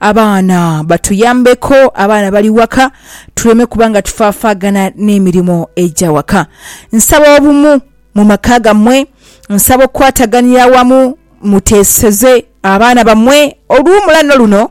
Abaana batuyambeku, abaana bali waka tuleme kuba nga tufaafaagana n'emirimo egya waka. Nsaba obumu mu maka gammwe, nsaba okukwataganira awamu muteeseze abaana bammwe olw'omulano luno.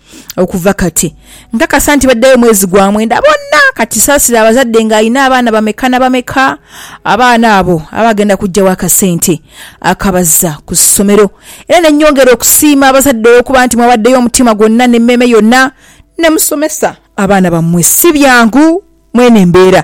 Okuva kati, nkakasa nti baddayo mwezi gwa mwenda bonna. Ka kisaasire abazadde ng'alina abaana bameka na bameka abaana abo aba agenda kuggyawo akasente akabazza ku ssomero. Era ne nnyongera okusiima abazadde olw'okuba nti mwawaddeyo omutima gwonna n'emmeeme yonna ne musomesa abaana bammwe. Si byangu mw'eno embeera.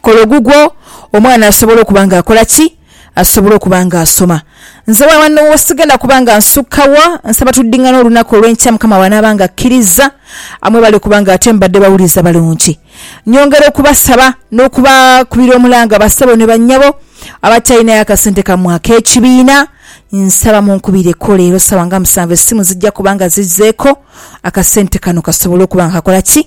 kola ogugwo, omwana asobola okuba nga akola ki? Asobola okuba nga asoma. Nze wano sigenda kuba nga nsukka wa, nsaba tudingane olunaku olw'enkya Mukama bw'anaaba nga akkirizza, mwebale kuba nga ate mubadde bawulize abalungi. Nyongera okubasaba n'okubakubira omulanga bassebo ne bannyabo abatalinayo akasente kammwe ak'ekibiina, nsaba munkubireko leero ssaawa nga musanvu essimu zijja kuba nga zizzeeko, akasente kano kasobole okuba nga kakola ki?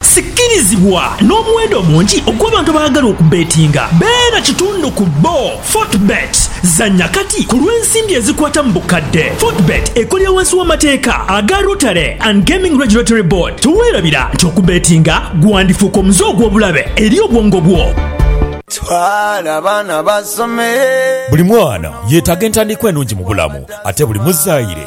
Sikirizibwa n'omuwendo omungi ogw'abantu abaagala okubbetinga. Beera kitundu ku bbo. Fortebet. Zannya kati ku lw'ensimbi ezikwata mu bukadde. Fortebet ekolera wansi w'amateeka aga Rotary and Gaming Regulatory Board. Teweerabira nti okubbetinga gwandifuuka omuze ogw'obulabe eri obwongo bwo. Twala abaana basome. Buli mwana yetaga entandikwa enungi mubulamu ate buli muzaire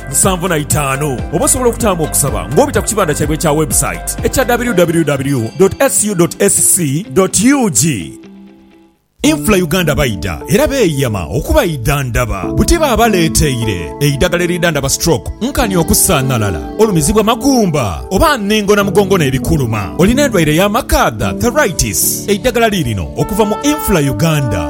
musanvu na itaanu oba osobola okutaamu okusaba ng'obita ku kibanda kyaibwe ekya website ekya www.scu.sc.ug. Infra Uganda baidha era beeyama okubaidhandhaba buti baabaleeteire eidagala eridhandhaba stroke, nkani okusaanhalala, olumizibwa magumba oba nningo na mugongo n'ebikuluma. Olina endwaire ya makaadha, thyroitis? Eidagala liirino okuva mu Infra Uganda.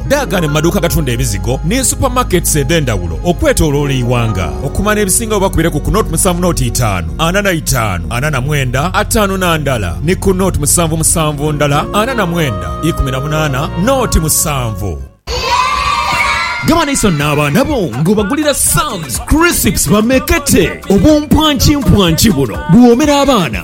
Daagane mu maduuka agatunda ebizigo ni super markets edhendawulo okwetoloola eighanga. Okumana ebisinga wo bakubire ku ku nought musanvu nought itaanu ana na itaanu ana na mwenda ataanu na ndala ni ku nought musanvu musanvu ndala ana na mwenda ikumi na munaana nought musanvu. Gaba naiso n'abaana bo ng'obagulira Sam's Crisps bamekete. Obumpwankimpwanki buno buwoomera abaana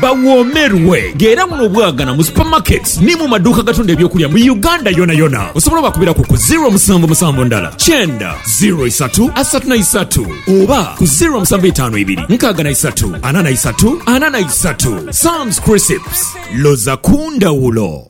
Bawoomerwe nga era buno bwagana mu supermarkets ni mu maduuka agatunda eby'okulya mu Uganda yonayona. Osobola obakubiraku ku ziro musanvu musanvu ndala kyenda ziro isatu asatu na isatu oba ku ziro musanvu itaanu ibiri nkaaga na isatu ana na isatu ana na isatu. Sam's Crisps, loza ku ndhawulo!